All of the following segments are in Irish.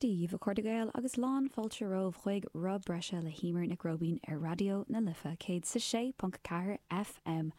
Dia daoibh, a chairde Gael agus lán fáilte romhaibh chuig Roth Breise le hEímear Nic Róibín ar Raidió na Life 106.4 FM.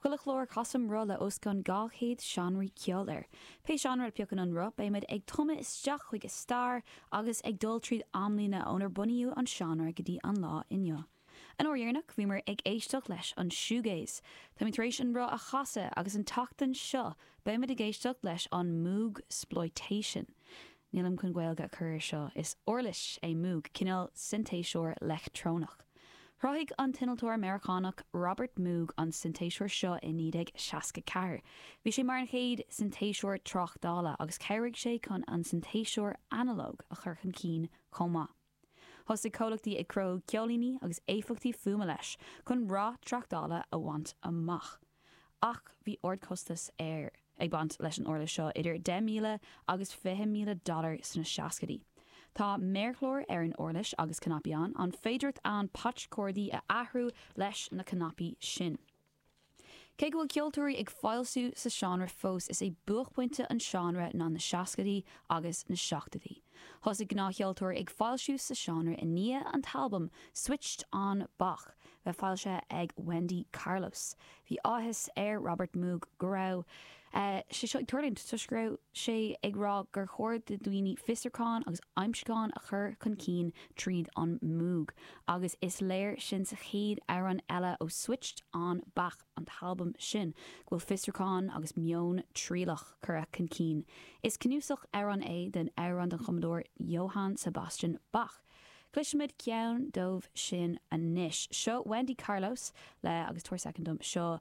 Chuile chlár casaim roth le os cionn 200 seánra ceoil air. Pé seánra a phiocann an roth beimid ag tumadh isteach chuig a stair agus ag dul tríd amlíne ónar bunaíodh an seánra go dtí an lá inniu. An uair dheireanach bhíomar ag éisteacht leis an shoegaze. Táimid tar éis an roth a chasadh agus an tseachtain seo beimid ag éisteacht leis an moogsploitation. Nílim chun Gaeilge a chur air seo, is uirlis é moog, cineál sintéiseoir leictreonach. Chruthaigh an t-innealtóir Meiriceánach Robert Moog an sintéiseoir seo i 1964. Bhí sé mar an chéad sintéiseoir tráchtála agus chabhraigh sé chun an sintéiseoir analóg a chur chun cinn chomh maith. Thosaigh comhlachtaí ag cruthú ceoilíní agus éifeachtaí fuaime leis chun rath tráchtála a bhaint amach. Ach bhí ardchostas ar ag baint leis an uirlis seo, idir 10,000 agus 20,000 dollar sna seascaidí. Tá méarchlár ar an uirlis agus cnaipí ann, an féidireacht ann patch cordaí a athrú leis na cnaipí sin. Cé go bhfuil ceoltóirí ag foilsiú sa seánra fós, is é buaicphointe an seánra ná na seascaidí agus na seachtaidí. Thosaigh gnáthcheoltóirí ag foilsiú sa seánra i ndiaidh an t-albam Switched On Bach bheith foilsithe ag Wendy Carlos. Bhí áthas ar Robert Moog go raibh sé seo ag tarlúint toisc go raibh sé ag rá gur chóir do dhaoine fiosrúcháin agus aimsiúcháin a chur chun cinn tríd an Moog agus is léir sin sa chéad amhrán eile ó Switched On Bach, an t-albam sin, go bhfuil fiosrúcháin agus meon trialach curtha chun cinn. Is cnuasach amhrán é den amhrán den chumadóir Johann Sebastian Bach. Cloisfimid ceann dóibh sin anois. Seo Wendy Carlos le agus tabhair soicind dom, seo